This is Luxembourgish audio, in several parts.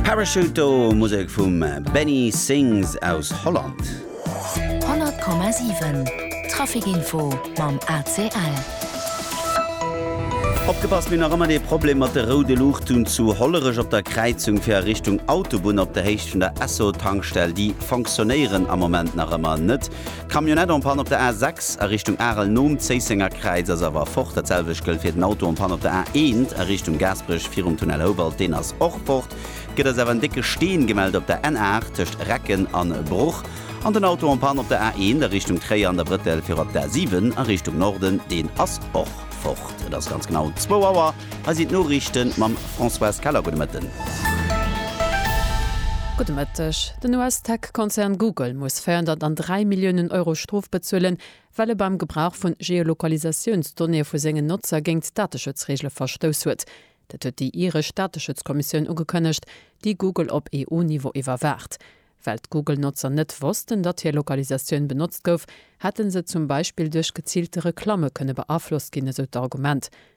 Parachute do, Musek vum Benny Sings aus Holland. 100,7 Traficinfo mam ACL. Opgepasst, mir hunn nach ëmmer dee Problem mat de roude Luuchten zu Hollerech op der Kräizung fir a Richtung Autobunn op der Héicht vun der Esso-Tankstell. Déi fonctionnéieren am Moment nach ëmmer net. D'Camionnette en panne op der A6 a Richtung Arel nom Zéissenger Kräiz ass awer fort. Dat selwecht gëllt fir den Auto en panne op der A1 a Richtung Gaasperech virum Tunnel Houwald, deen ass och fort. Et gëtt eis awer en décke Steen gemellt op der N8 tëscht Recken an Bruch. An den Auto en panne op der A1 a Richtung Tréier an der Brëttel viru op der A7 a Richtung Norden, deen ass och fort. Et ass ganz genau zwou Auer. Hei sinn d'Noriichten mam Françoise Keller. Gudde Mëtten. Gudde Mëtteg. Den US-Tech-Konzern Google muss 403 Milliounen Euro Strof bezuelen, well e beim Gebrauch vu Geolokalisatiounsdonnéeë vu sengen Notzer géint d'Dateschutzreegele verstouss huet. Dat huet déi iresch Dateschutzkommissioun ugekënnegt, déi Google op EU-Niveau iwwerwaacht. Well d'Google-Notzer net wossten, datt hir Lokalisatioun benotzt gouf, hätte se zum Beispill duerch geziilte Reklamme kënne beaflosst ginn, esou d'Argument.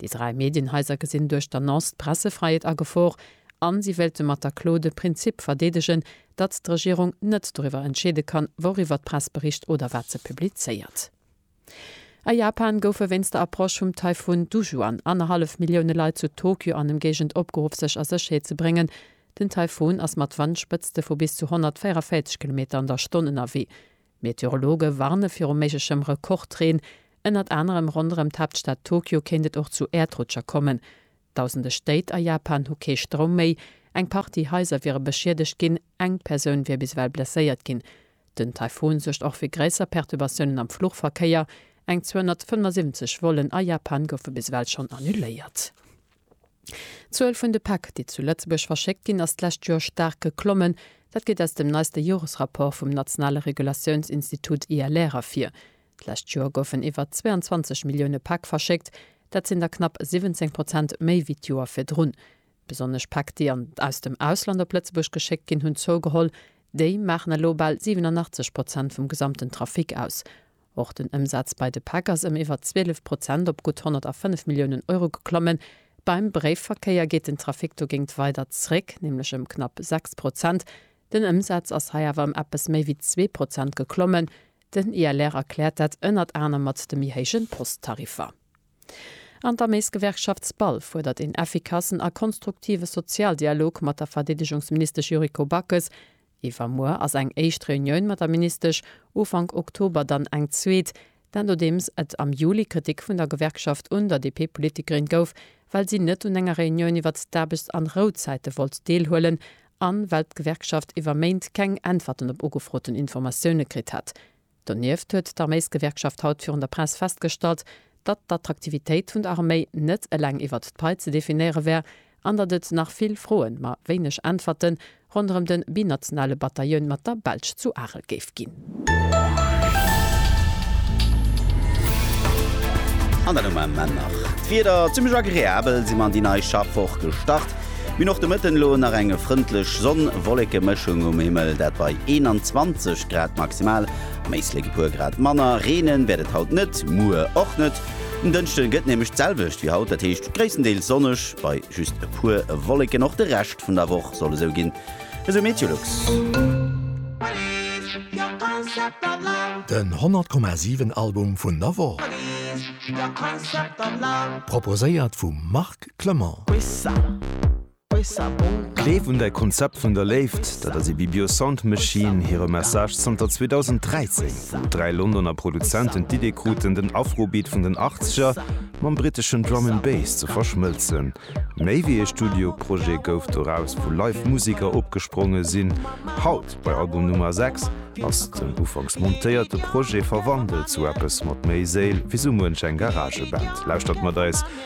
Déi dräi Medienhaiser gesinn duerch d'Annonce d'Pressefräiheet a Gefor a si wéilte mat der Klo de Prinzip verdeedegen, datt d'Regierung net doriwwer entscheede kann, wouriwwer d'Press bericht oder wat se publizéiert. A Japan goufe wéinst der Approche vum Taifun Dujuan annerhallef Millioune Leit zu Tokyo an Emgéigend opgeruff sech a Sécherheet ze bréngen. Den Taifun ass mat Wandspëtzte vu bis zu 144 Kilometer an der Stonn ënnerwee. Meteorologe warne viru méiglechem Rekordreen. Ënnert anerem ronderëm d'Haaptstad Tokio kéint et och zu Äerdrutscher kommen. Dausende Stéit a Japan hu kee Stroum méi. Eng Partie Haiser wiere beschiedegt ginn, eng Persoun wier bis ewell blesséiert ginn. Den Taifun suergt och fir gréisser Perturbatiounen am Fluchverkéier. Eng 275 Vollen a Japan goufe bis ewell schonn annuléiert. D'Zuel vun de Päck, déi zu Lëtzebuerg verschéckt ginn, ass d'lescht Joer staark geklommen. Dat geet aus dem neiste Joresrapport vum nationale Regulatiounsinstitut ILR ervir. D'lescht Joer goufen iwwer 22 Millioune Päck verschéckt. Dat sinn der knapp 17 Prozent méi wéi d'Joer virdrun. Besonnesch Päck, déi an aus dem Ausland op Lëtzebuerg geschéckt ginn, hunn zougeholl. Déi maachen elo bal 87 Prozent vum gesamten Trafic aus. Och den Ëmsaz bei de Päck ass ëm iwwer 12 Prozent op gutt 105 Milliounen Euro geklommen. Beim Bréifverkéier geet den Trafic dogéint weider zréck, nämlech ëm knapp 6 Prozent. Den Ëmsaz ass hei awer ëm eppes méi wéi zwee Prozent geklommen. Den ILR erkläert dat ënnert anerem mat de méi héijen Posttariffer. An der Maisgewerkschaft SPAL fuerdert een effikassen a konstruktive Sozialdialog mat der Verdeedegungsministesch Yuriko Backes. Iwwermuer ass eng éischt Reunioun mat der Ministesch, Ufank Oktober dann eng zweet. Dat nodeems et am Juli Kritik vun der Gewerkschaft un der DP-Politikerin gouf, well si net un enger Reunioun iwwert d'Aarbechts an Rouzäite wollt deelhuelen an well d'Gewerkschaft iwwer Méint keng Äntwerten op ugefroten Informatioune kritt hätt. Donieft huet d'Arméisgewerkschaft haut virun der Press festgestallt, datt d'Attraktivitéit vun der Arméi net eleng iwwert d'Pai ze definéiere wär an datt et nach vill Froen, ma wéineg Äntwerte ronderëm de binationale Batailloun mat der Belsch zu Arel géif ginn. An dat um en Männerdag. D'Wieder zimmlech agreabel, si mer an déi nei Schaffwoch gestart. Mir och de Mëtten elo nach eng frëndlech Sonn-Wolleke-Mëschung um Himmel, dat bei 21 Grad maximal. Am Éislek e puer Grad manner. Reenen wäert et haut net, muer och net. Um Dënschde gëtt nämlech d'selwecht wéi haut, dat heescht gréisstendeels sonneg bei just e puer Wolleken. Och de Rescht vun der Woch soll esou ginn, esou MeteoLux. Den 100 Komma 7 Album vun der Woch proposéiert vum Marc Clement. Gleef un däi Konzept vun der Léift, dat ass Ibibio Sound Machine hire Message zanter 2013, wou dräi Londoner Produzenten d'Idee kruten, den Afrobeat vun den Achtzeger mam briteschen Drum and Bass ze verschmëlzen. Méi wéi ee Studioprojet gouf doraus, wou live Museker opgespronge sinn. Haut, bei Album Nummer 6, ass den ufanks montéierte Projet verwandelt zu eppes mat méi Séil wéi sou muench eng Garageband. Lauschtert mat eis